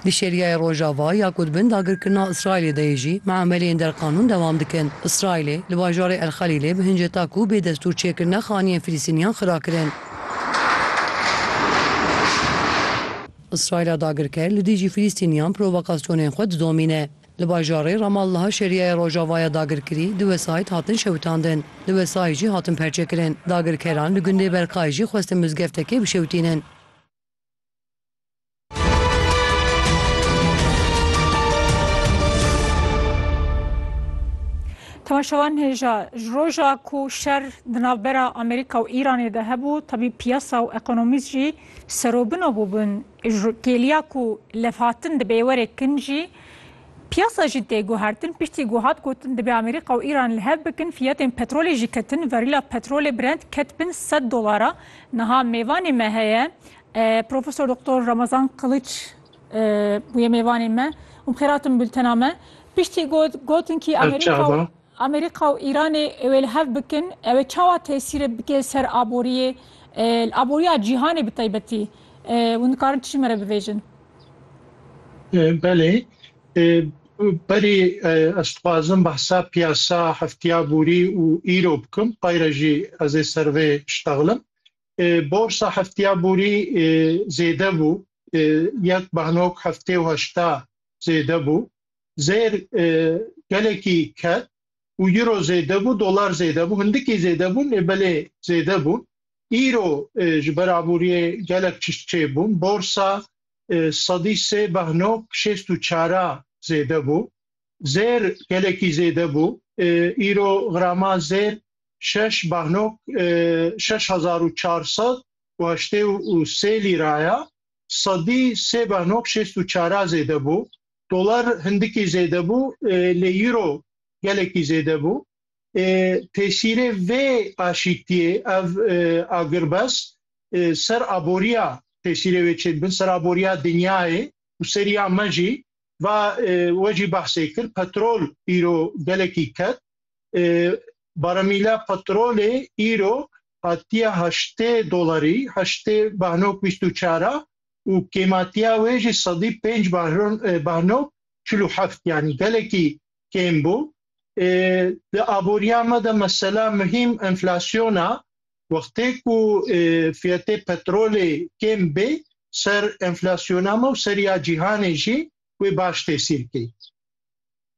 Di şêriyeyê Rojava ya ku di bin dagirkirina Îsraîlê de yê jî miemeleyên derqanûn dewam dikin. Îsraîlê li bajarê El Xelîlê bi hinceta ku bê destûr çêkirine xaniyên Filîstîniyan xira kirin. Îsraîla dagirker li dijî Filîstîniyan provokasyonên xwe didomîne. Li bajarê Ramallaha şêriyeyê Rojava ya dagirkirî du wesayît hatin şewitandin. Du wesayît jî hatin perçekirin. Dagirkeran li gundê Berkayê jî xwestin mizgeftekê bişewitînin. Temaşevan hêja ji roja ku şer di navbera Amerîka û Îranê de hebû tevî piyasa û ekonomîst jî serobino bûbûn kêliya ku levhatin di bêwerê kin jî piyasa jî tê guhertin piştî ku hat gotin dibê Amerîka û Îran li hev bikin fiyetên petrolê jî ketin verîla petrolê Brent ket bin sed dolara niha mêvanê me heye Profesor Doktor Ramazan Qiliç bûye mêvanê me û bi xêr hatin bultena me. Piştî got gotin kî Amerîka û Îranê wê li hev bikin ew ê çawa tesîrê bike li ser aboriyê li aboriya cîhanê bi taybetî hûn dikarin tu jî me re bivêjin. Belê berî ez dixwazim behsa piyasa heftiya borî û îro bikim xwayre jî ez ê ser vê şitexlim. Borsa hefteya borî zêde bû, yek behnok heftê û heşta zêde bû. Zêr gelekî ket û euro zêde bû, dolar zêde bû, hindikî zêde bûn ê belê zêde bûn. Îro ji ber aboriyê gelek tişt çê bûn. Borsa sedî sê behnok şêst û çara zêde bû. zêr gelekî zêde bû. Îro grama zêr şeş bahnok şeş hezar û çar sed û heştê û sê lîra ye. Sedî sê bahnok şêst û çara zêde bû. Dolar hindikî zêde bû lê îro gelekî zêde bû. Tesîrê vê aşîtiyê ev agirbest ser aboriya tesîrê wê çêdibin ser aboriya dinyayê û ser ya me jî Va we jî behsê kir petrol îro gelekî ket. Baremîla petrolê îro hatiye heştê dolarî, heştê behnok bîst û çar a û kêmatiya wê jî sedî pênc behnok çil û heft yanî gelekî kêm bû. Di aboriya me de mesela muhîm enflasyona Wextê ku fiyetê petrolê kêm bê ser enflasyona me û ser ya cîhanê jî wê baş tesîr key.